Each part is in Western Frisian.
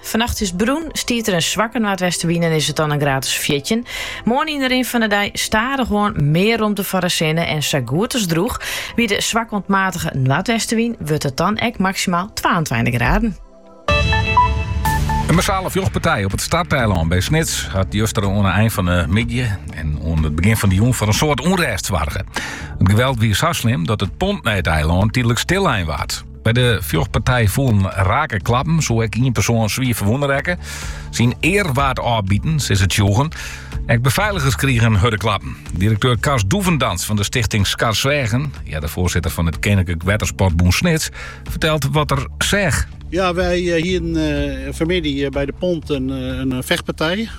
Fannacht is it drûch, stiet der in swakke noardwestenwyn en is it dan in graad as fjirtjin. Moarn yn de rin fan de dei stadichoan mear romte foar de sinne en sa goed as drûch. By de swakke oant matige noardwestenwyn wurdt it dan ek maksimaal twaentweintich graden. In massale fjochtpartij op it Starteilân by Snits hat juster oan de ein fan de middei en oan it begjin fan de jûn foar in soad ûnrêst soarge. It geweld wie sa slim dat it pont nei it eilân tydlik stillein waard. By de fjochtpartij foelen rake klappen, soe ek ien persoan swier ferwûne rekke. Syn ear waard ôfbiten, sizze tsjûgen. Ek befeiligers krigen hurde klappen. Direkteur Karst Doevendans fan de stichting Skarsweagen, earder foarsitter fan it Keninklik Wettersportbûn Snits, fertelt wat er seach. Ja, wy hienen eh, fanmiddei eh, by de pont in, eh, in eh, fechtpartij.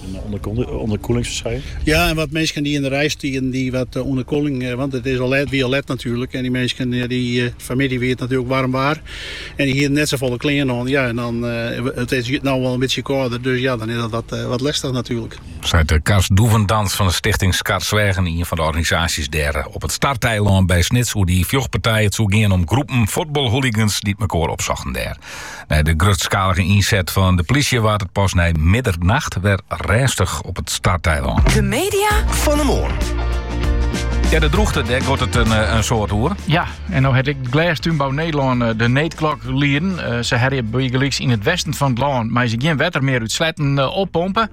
En ûnderkoelingsferskynsels. Ja, en wat minsken dy't yn de rij stieden, dy't wat ûnderkoeling, want it wie al let natuerlik. En dy minsken, fanmiddei wie it natuerlik waarm waar en dy hiene net safolle klean oan. Ja, en dan, it is no al in bytsje kâlder, dus ja, dan is dat wat lestich natuerlik. Seit de Karst Doevendans fan de Stichting Skarsweagen, ien fan de organisaasjes dêr op it Starteilân by Snits oer dy fjochtpartij. It soe gean om groepen fuotbalhooligans dy't mekoar opsochten dêr. Nei de grutskalige ynset fan de plysje waard it pas nei middernacht wer rêstich op it Starteilân. De media fan de moarn. Ja, de droechte, dêr giet it in, eh, in soad oer. Ja, en no hat ek Glêstúnbou Nederlân eh, de needklok lieden. Eh, se hawwe, bygelyks yn it westen fan it lân meie se gjin wetter mear út sleatten oppompe.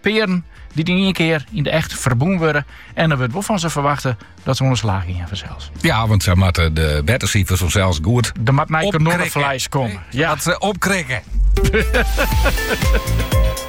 Pearen dy't yn ien kear yn de echt ferbûn wurde en der wurdt wol fan se ferwachte dat se oan de slach gean fansels. Ja, want se moatte de bertesifers fansels goed. Der moat nij kanonnefleis komme. Ja. Dat se opkrikke.